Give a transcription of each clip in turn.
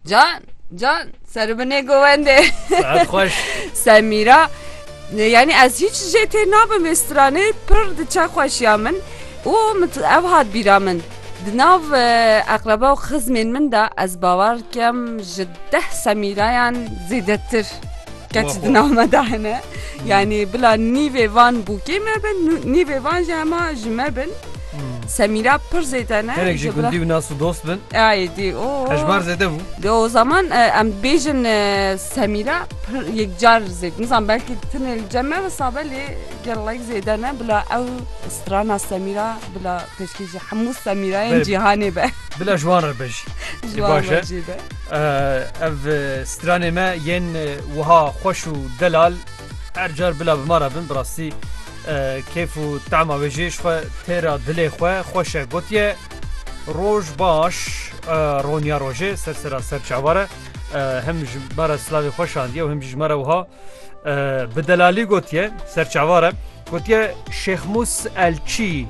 Can, can, seribine govende. Saat hoş. Semira, yani ez hiç jete nabim ve strane pır dıça hoş ya min. O mit ev hat bira min. Dinav akraba u xızmen min da ez bavar kem ji deh semirayan zêdetir. Keç dinav me dahine. Yani bila nîvê van bûkê me bin, nîvê van jema ji me bin. Semîra pir zêde ne Hinek ji gundî û nas û dost bin. Ayê dî o Hejmar zêde bû. Di o zaman e, em dibêjin e, Semîra pir yekcar zêd. Nizan belkî tine li cem me hisabe lê gelek zêde ne bila ew strana Semîra bila pêşkê ji hemû Semîrayên Berê. cîhanê be. Bila ji wan re be jî. Ji wan baş e. re jî be. Eh, Ev eh, stranê me yên eh, wiha xweş û delal Her car bila bi ma re bin bi rastî kêf û tema wê jê ji xwe tê re dilê xwe xweş e gotiye roj baş roniya rojê ser sera ser çawa re hem ji me re silavê xwe şandiye û hem jî ji me re wiha bi delalî gotiye ser çawa re Gotiye Şêxmus Elçî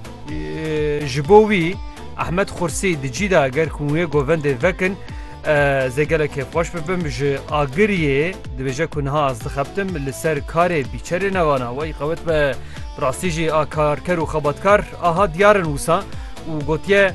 ji bo wî Ehmed Xursî di cî de ger ku wê govendê vekin zê gelek kêfxweş bibim ji Agiriyê dibêje ku niha ez dixebtim li ser karê bîçerê newana wey qewet be rastî jî a karker û xebatkar aha diyarin wisa û gotiye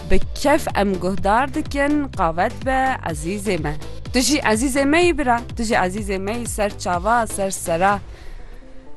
Bi kef em guhdar dikin qave dibe ezîzê me. Tu jî ezîzê me yî bira, tu jî ezîzê me yî ser çava, ser sera.